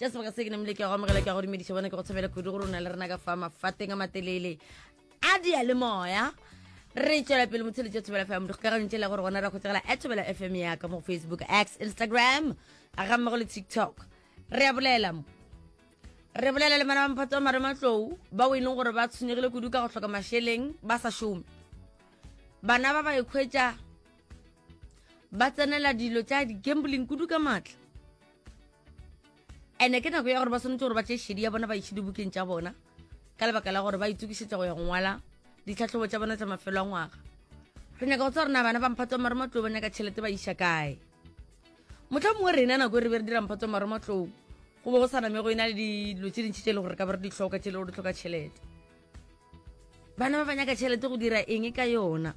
ja sebaka se ke namile ke ya go amogela ke ya go dumediša bona ke go tshwabela kudu gore o na le rena ka fa mafateng a matelele a dia le moya re tšwela pele motshelo tša thobela fm dikgokagantše le gore gona ra kgotsegela a thobela fm ya ka mo facebook x instagram a ga mmago le tiktok re a bolela mo re bolela le mana ba mophatsa wa mare matlou bao e leng gore ba tshwenyegile kudu ka go tlhoka mašeleng ba sa šome bana ba ba ekgwetša ba tsenela dilo tša di-gambling kudu ka maatla ene ke nako ya gore ba swanetse gore ba tse šedi ya bona ba itšhe dibukeng tša bona ka lebaka la gore ba itokisetsa go ya go ngwala ditlhatlhobo tša bona tsa mafelo a ngwaga re nyaka go tsa gore na bana ba mphatsa maromatlou ba nyaka tšhelete ba iša kae motlha mongwe rena nako e re be re dira mphatsa maromatlou go be go sa name go e na le dilo tse dintšhi tse e le gore ka ba re di tlhoka tse e le gore di tlhoka tšhelete bana ba ba nyaka tšhelete go dira eng ka yona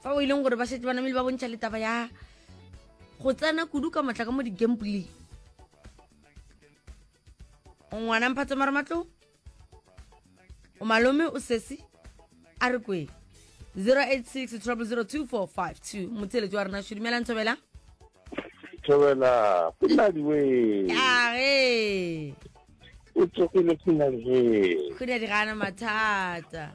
fa o e leng gore ba setse ba namele ba bontšha letaba ya go tsena kudu ka matla ka mo di-gambling ngwana mphatse mara matlo o malome o sesi a re kweng 086 0002452 motseletso wa rena sho dumela ntshobela thobela kunadi we age o tsogile kunadi he kunadi ga ana mathata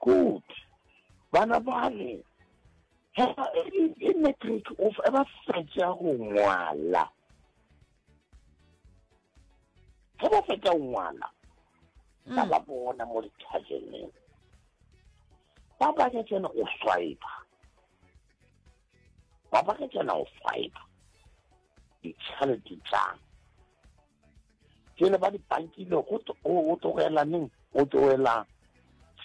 Good. Bana bale, hela e, e, e matric o fe ba fetša go ngwala. Ge ba fetša go ngwala, mm. ka ba bona mo dithajeneng. Ba banya tsena o swipe. Ba banya tsena o swipe. ditšhelete tšang ke le ba dipankile go tlogela neng go tlogela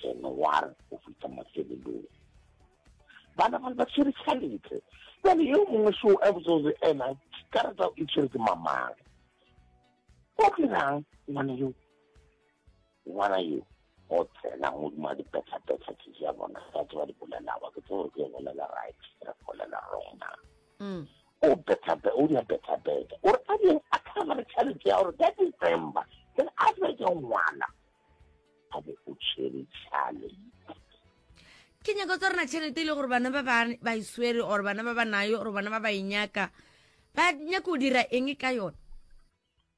january go fitlha mafelelong bana ba ba tshwere tšhelete bjale yo mongwe so a botsoze ena karata e tshwere ke mamang o dirang ngwana yo ngwana yo o tsena modimo a di petla-petla ke ja bona ba tse ba di bolelago ke tseo ke bolela right re bolela wrong na mm. o petla-petla o di a petla-petla o re a di a kgama re tšhaletse ya gore ka december ke re a se ke ngwana a be o tšhwere tšhale ke nyako tsa rena tšhelete e le gore bana ba ba e swere or bana ba ba nayo or bana ba ba e nyaka ba nyaka o dira eng ka yone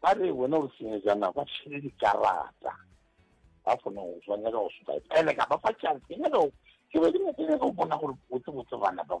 Ba re, Wena o senyejana, ba tšhele dikarata. Ba fona go tswa, nyaka go soka. Peleka, ba fa tšhanse, ke nyaka go, ke be ke nyaka go bona gore botsebotse bana ba bo.